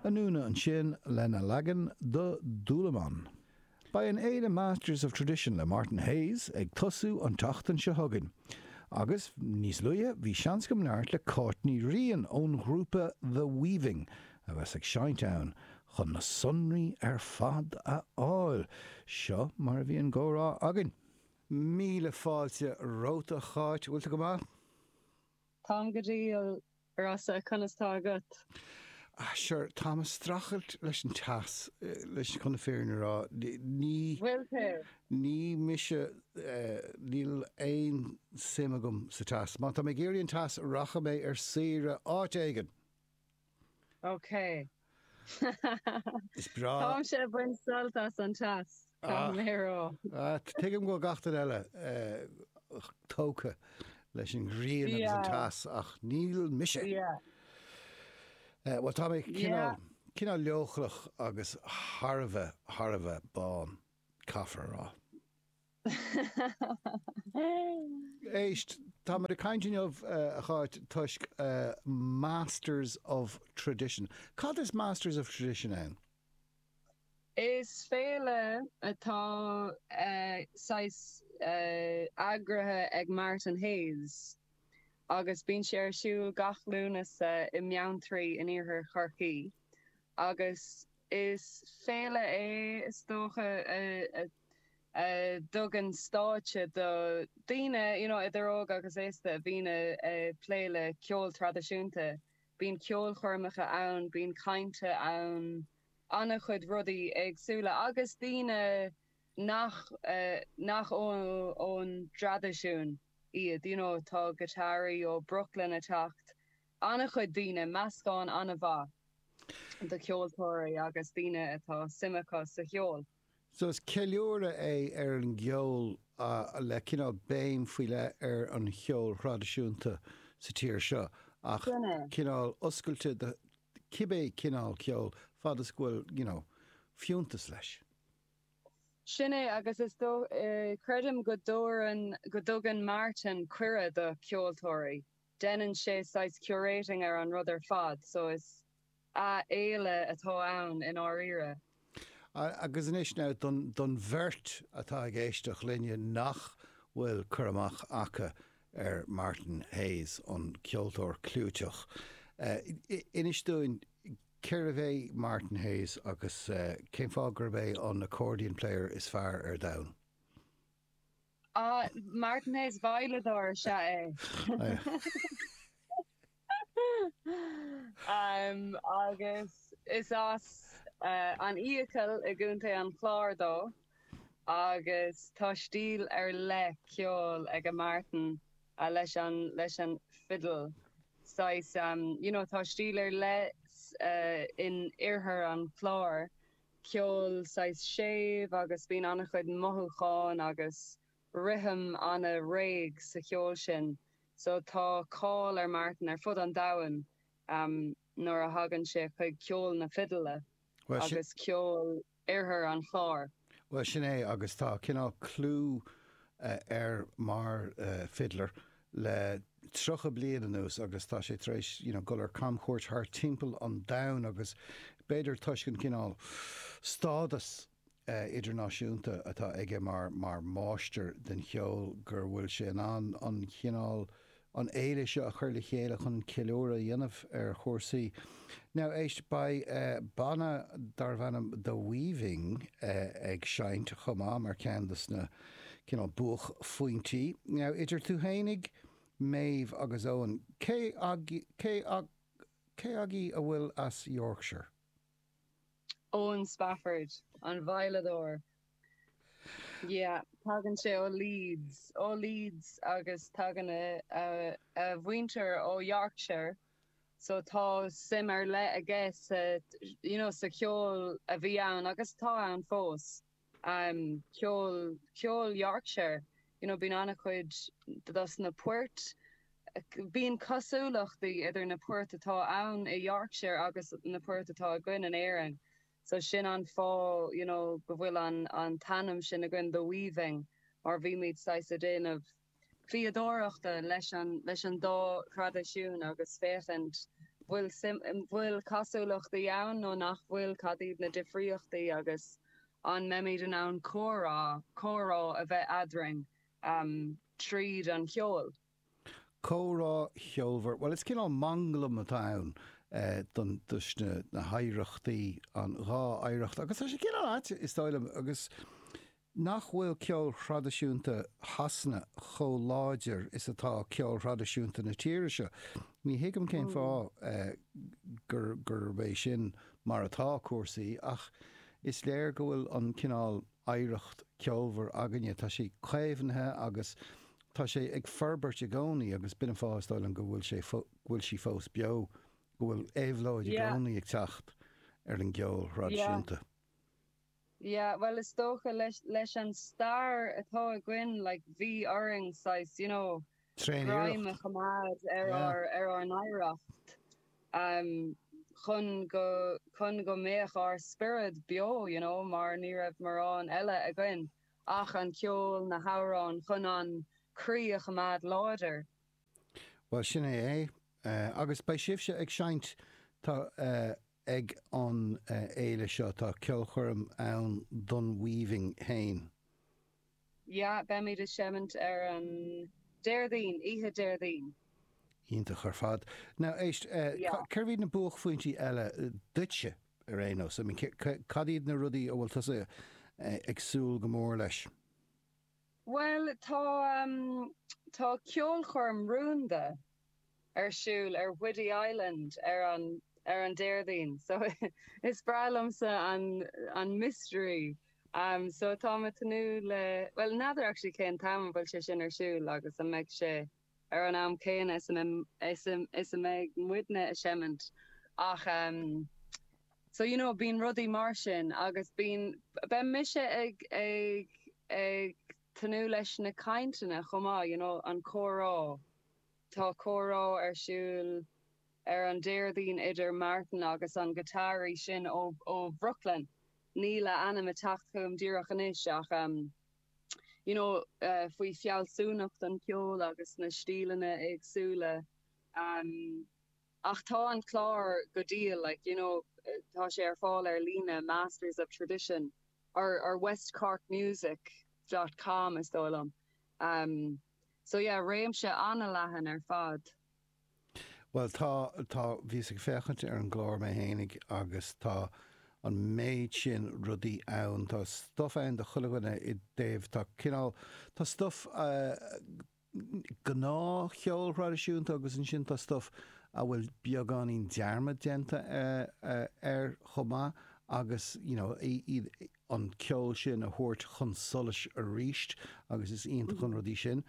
Anúna ansin, lena leagan do Dúlamán. Beidh an fhéile Masters of Tradition le Martin Hayes ag tosú an tseachtain seo chugainn. Agus, níos luaithe, bhí seans agam labhairt le Cáit Ní Riain ón ghrúpa The Weaving a bheas ag seinnt ann chun na sonraí ar fad a fháil. Seo mar a bhí an comhrá againn. Míle fáilte romhat a Cháit. Bhfuil tú go maith? Táim go diail Rossa, Conas tá agatsa? Ah, sure, táim ag streachailt leis an teas, leis, chun na fírinne a rá. Ní. bhfuil tú? Ní mise, níl aon suim agam sa teas. Má tá mé ag iarraidh an teas, rachaidh mé ar saoire áit éigin! Okay. Is breá. Táimse ag baint sult as an teas, caithfidh mé a rá. Ah, tuigim go bhfuil gach duine eile tógtha leis an ghrian agus an teas ach níl mise. Bhuel, tá mé cineál leochaileach agus thar a bheith, thar a bheith bán. caithfear a rá. Éist, tá muid ag caint inniu, a Cháit, toisc Masters of Tradition. Cad is Masters of Tradition ann? Is féile atá saghas eagraithe ag Martin Hayes. agus bíonn sé ar siúl gach Lúnasa i mBeanntraí in iarthar Chorcaí agus is féile é is dócha a dtugann stáitse do daoine you know idir óg agus aosta a bhíonn a' plé le ceol traidisiúnta. Bíonn ceolchoirmeacha ann, bíonn cainte ann, ana-chuid rudaí éagsúla agus daoine nach, nach ón dtraidisiún iad, you know tá giotáraí ó Brooklyn a' teacht, an-chuid daoine, meascán an-mhaith do cheoltóirí agus daoine atá suim acu sa cheol. So is ceiliúradh é ar an gceol le cineál béim faoi leith ar an cheol thraidisiúnta sa tír seo ach cineál oscailte do cibé cineál ceol fad is go bhfuil, you know, fiúntas leis. Sin é agus is dóigh, creidim go dtabharann, go dtugann Martin cuireadh do cheoltóirí, deineann sé saghas curating ar an rud ar fad so is an-fhéile atá ann i ndáiríre. Agus anois now, don, don bheirt atá ag éisteacht linne nach bhfuil cur amach acu ar Martin Hayes, an ceoltóir cliúiteach, inis dúinn Cé hé Martin Hayes agus cén fáth gurb é an accordion player is fearr ar domhan? Martin Hayes veidhleadóir is ea é. Agus is as An Fhiacail i gContae an Chláir dó agus tá stíl ar leith ceoil aige Martin. ah leis an leis an fiddle saghas you know tá stíl ar leith in oirthear an Chláir ceol saghas séimh agus bíonn an-chuid mothúcháin agus rithim an-réidh sa cheol sin so tá cáil ar Martin ar fud an domhain nuair a thagann sé chuig ceol na fidle agus ceol Oirthear an Chláir. Bhuel, sin é agus tá cineál clú air mar fiddler le tríocha bliain anuas agus tá sé tar éis you know dul ar camchuairt thart timpeall an domhain agus b'fhéidir toisc an cineál stádas idirnáisiúnta atá aige mar mar máistir den cheol gur bhfuil sé in ann an cineál an fhéile seo a chur le chéile chun ceiliúradh a dhéanamh ar chúrsaí. Now éist, beidh banna darbh ainm The Weaving ag seinnt chomh maith mar ceann de sna cineál buaicphointí. Now idir tú fhéinig, a Mhéabh agus Owen, cé agaibh a bhfuil as Yorkshire? Owen Spafford, an veidhleadóir. Yeah, tagann sé ó Leeds. Ó Leeds agus tagann a mhuintir ó Yorkshire so tá suim ar leith aige sa, you know, sa cheol a bhí ann agus atá ann fós. am ceol ceol Yorkshire you know bíonn an-chuid dos na poirt bíonn cosúlachtaí idir na poirt atá ann i Yorkshire agus na poirt atá againn in Éirinn so sin an fáth you know go bhfuil an an t-ainm sin againn the weaving mar bhímid saghas a' déanamh fíodóireachta le leis an dá thraidisiún agus féachaint an bhfuil cosúlachtaí ann nó nach bhfuil, cad iad na difríochtaí agus an mbeimid in ann comhrá, comhrá a bheith eadrainn tríd an cheol. Comhrá cheolmhar. Bhuel, is cineál manglam atá ann don, leis na hoidhreachtaí, an dhá oidhreacht agus tá sé cineál ait, is dóigh liom, agus Nach bhfuil ceol thraidisiúnta Shasana chomh láidir is atá ceol thraidisiúnta na tíre seo? Ní thuigim cén fáth gurb é sin mar atá cúrsaí ach is léir go bhfuil an cineál oidhreacht ceolmhar againne, tá sé caomhnaithe agus tá sé ag forbairt i gcónaí agus b'in an fáth is dóigh liom go bhfuil sé, go bhfuil sí fós beo, go bhfuil éabhlóid i gcónaí ag teacht ar an gceol thraidisiúnta. Yeah, bhuel is dócha, leis, leis an stair atá againn, like, bhí orainn saghas, you know, greim a choimeád ar, ar ár, ar ár n-oidhreacht, em, chun go, chun go mbeadh ár spiorad beo, you know, mar ní raibh morán eile againn ach an ceol, na hamhráin, chun an croí a choimeád láidir. Bhuel, sin é é. Eh, agus beidh sibhse ag seinnt, tá, eh, Ag an bhféile seo tá ceolchoirm ann don Weaving féin. Yeah, beimid ag seimint ar an Déardaoin, oíche Déardaoin. Iontach ar fad. Now éist, Yeah. cérbh iad na buaicphointí eile duitse ar aon nós? I mean, cad iad na rudaí a bhfuil tusa ag súil go mór leis? Bhuel, tá, tá ceolchoirm rúnda ar siúl ar Whiddy Island ar an, ar an Déardaoin so is breá liomsa an, an mystery. So táim ag tnúth le, bhuel n'fheadar actually cén t-am a bhfuil sé sin ar siúl agus an mbeidh sé. ar an am céanna is a bheidh muidne ag seimint ach so you know bíonn rudaí mar sin agus bíonn beidh mise ag ag ag tnúth leis na cainteanna chomh maith you know an comhrá tá comhrá ar siúl ar an Déardaoin idir Martin agus an guitáraí sin ó ó Bhrooklyn níl a ainm ag teacht chugam díreach anois ach you know faoi fealsúnacht an cheoil agus na stíleanna éagsúla em ach tá an clár go diail like you know tá sé ar fáil ar líne masters of tradition or or west cork music dot com is dóigh liom em so yeah réimse an-leathan ar fad. Bhuel tá, tá, bhíos ag féachaint ar an gclár mé fhéinig agus tá an méid sin rudaí ann, tá stuff ann do chuile dhuine i dtaobh, tá cineál, tá stuff gnáthcheol thraidisiúnta agus ansin tá stuff a bhfuil beagáinín dearmad déanta air chomh maith agus you know, iad, an ceol sin a thabhairt chun solais arís agus is iontach an rud é sin.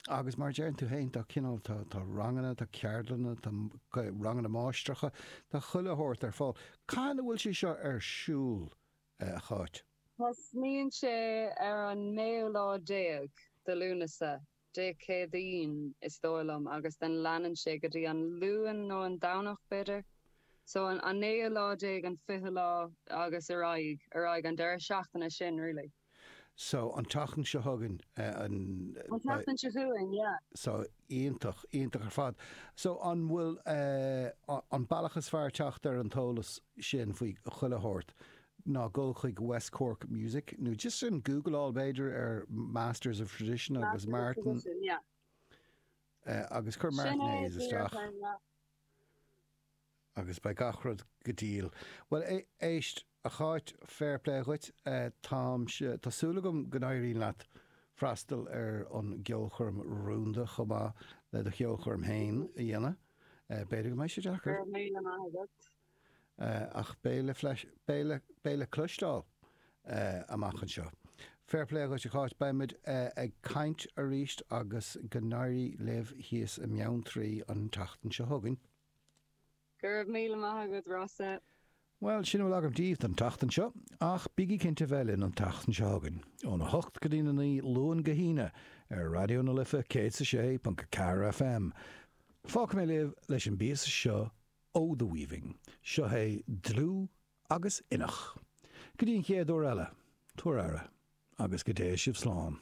Agus mar a deireann tú féin tá cineál, tá ranganna, tá ceardlanna, tá ranganna máistreacha, tá chuile shórt ar fáil. Cathain a bhfuil sé seo ar siúl, a Cháit? Tosnaíonn sé ar an naoú lá déag de Lúnasa. Dé Céadaoin is dóigh liom agus then leanann sé go dtí an Luan nó an Domhnach b'fhéidir. So an an naoú lá déag, an fichiú lá agus ar aghaidh, ar aghaidh an deireadh seachtaine sin really. So an tseachtain seo chugainn an. An tseachtain seo chugainn, yeah. So iontach, iontach ar fad. So an bhfuil eh an bealach is fearr teacht ar an eolas sin faoi chuile shórt? Ná gabh chuig West Cork Music nó just gúgláil b'fhéidir ar Masters of Tradition agus Masters of Tradition, yeah. eh, agus cuir Martin Hayes isteach. Sin é. agus beidh gach rud go diail. Bhuel é- éist, a Cháit, fair play dhuit, eh, táimse, tá súil agam go n-éiríonn leat freastal ar an gceolchoirm rúnda chomh maith le do cheolchoirm féin a dhéanamh. Eh, b'fhéidir go mbeidh sé deacair. Go raibh míle maith agat. ach beidh le cloisteáil amach anseo. Fair play dhuit a Cháit, beimid ag caint arís agus go n-éirí libh thíos i mBeanntraí an tseachtain seo chugainn. Go raibh míle maith agat Rossa. Bhuel, sin a bhfuil agam díbh don tseachtain seo, ach bígí cinnte bheith linn an tseachtain seo chugainn, óna hocht go dtí a naoi, Luan go hAoine, ar Raidió na Life 106.4 FM. Fágfaidh mé libh leis an bpíosa seo 'O the Weaving', seo é Dlúth agus Inneach. Go dtí an chéad uair eile, tabhair aire agus go dté sibh slán.